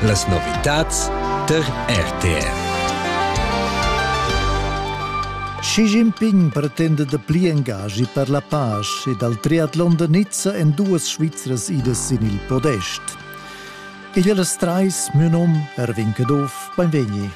Las novitads tar RTR. Xi Jinping pretenda da pli engaschi per la pace e dal triatlon da Nizza en duas Svizras idas sin il podest. Igl las trais, mio nom, Erwin Caduff, beinvegni.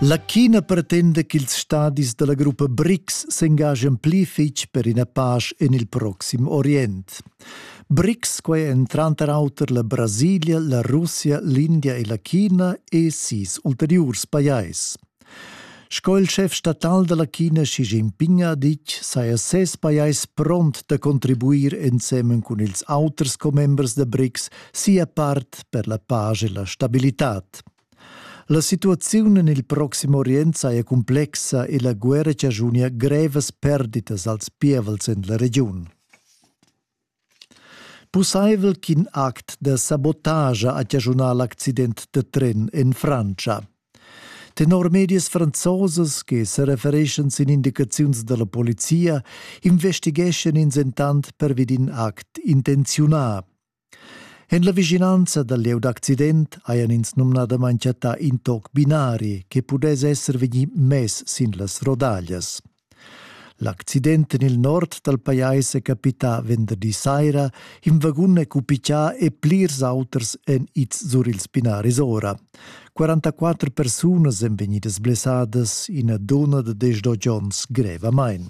La China pretenda ch'ils stadis dalla gruppa BRICS s'engagian pli fetg per ina pasch en il proxim Orient. BRICS, quai èn tranter auter la Brasilia, la Russia, l'India e la China e sis ulteriurs pajais. Sco il schef statal dalla China Xi Jinping ha ditg, saja ses pajais pront da contribuir ensemen cun ils auters commembers da BRICS sia part per la pace e la stabilitad. La situaziun en il Proxim Orient saja cumplexa e la guerra chaschunia grevas perditas als pievels en la regiun. Pussaivel ch'in act da sabotagia ha chaschunà l'accident da tren en Frantscha. Tenor medias franzosas che sa refereschan sin indicaziuns da la polizia investigeschan ins entant pervi d'in act intenziunà. En la vischinanza dal lieu d'accident hajan ins numnadamain chattà in toc binari che pudess esser vegnì mess sin las rodaglias. L'accident en il nord dal pajais è capità venderdi saira. In vagun è cupichà e plirs auters èn ids sur ils binaris ora. 44 persunas èn vegnidas blessadas, ina dunna da 18 onns grevamain.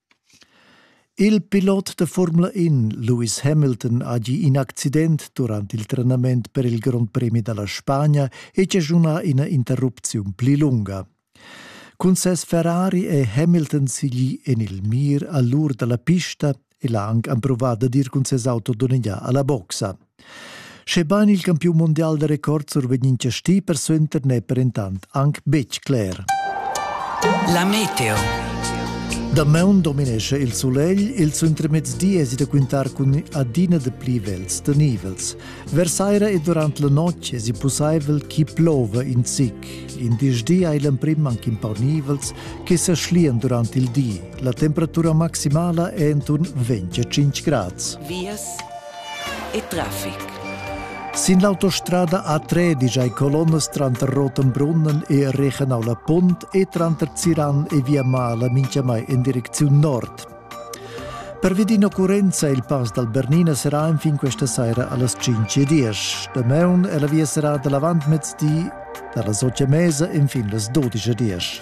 Il pilot da Formula In Lewis Hamilton ha gì in accident durant il trenament per il Grond Premi da la Spagna e chaschunà ina interrupziun pli lunga. Cun ses Ferrari è Hamilton siglì en il mir a l'ur da la pista e l'ha anc empruvà dad ir cun ses auto donnegià a la boxa. Schebain il campiun mondial da record survegn in chastì persuenter n'è per entant anc betg cler. La meteo. Damaun dominescha il sulegl, il suentermezdi èsi da quintar cun adina de pli vels da nivels. Versaira e durant la notg èsi pussaivel chi plova in zic. In disdi hai l'emprim anc in pau nivels che sa schlian durant il di. La temperatura maximala è intorno 25 grads. Vias e traffic. Sin l'autostrada A3 digia ei colonnas tranter Rotenbrunnen e Regenau la Punt e tranter Ziran e Via Mala minchiamai in direcziun nord. Per Vedin Occurenza il pass dal Bernina serà enfin questa saira allas 5.10. Damaun è la via serrada l'avantmezdi dalla 8.30 fin las 12.10.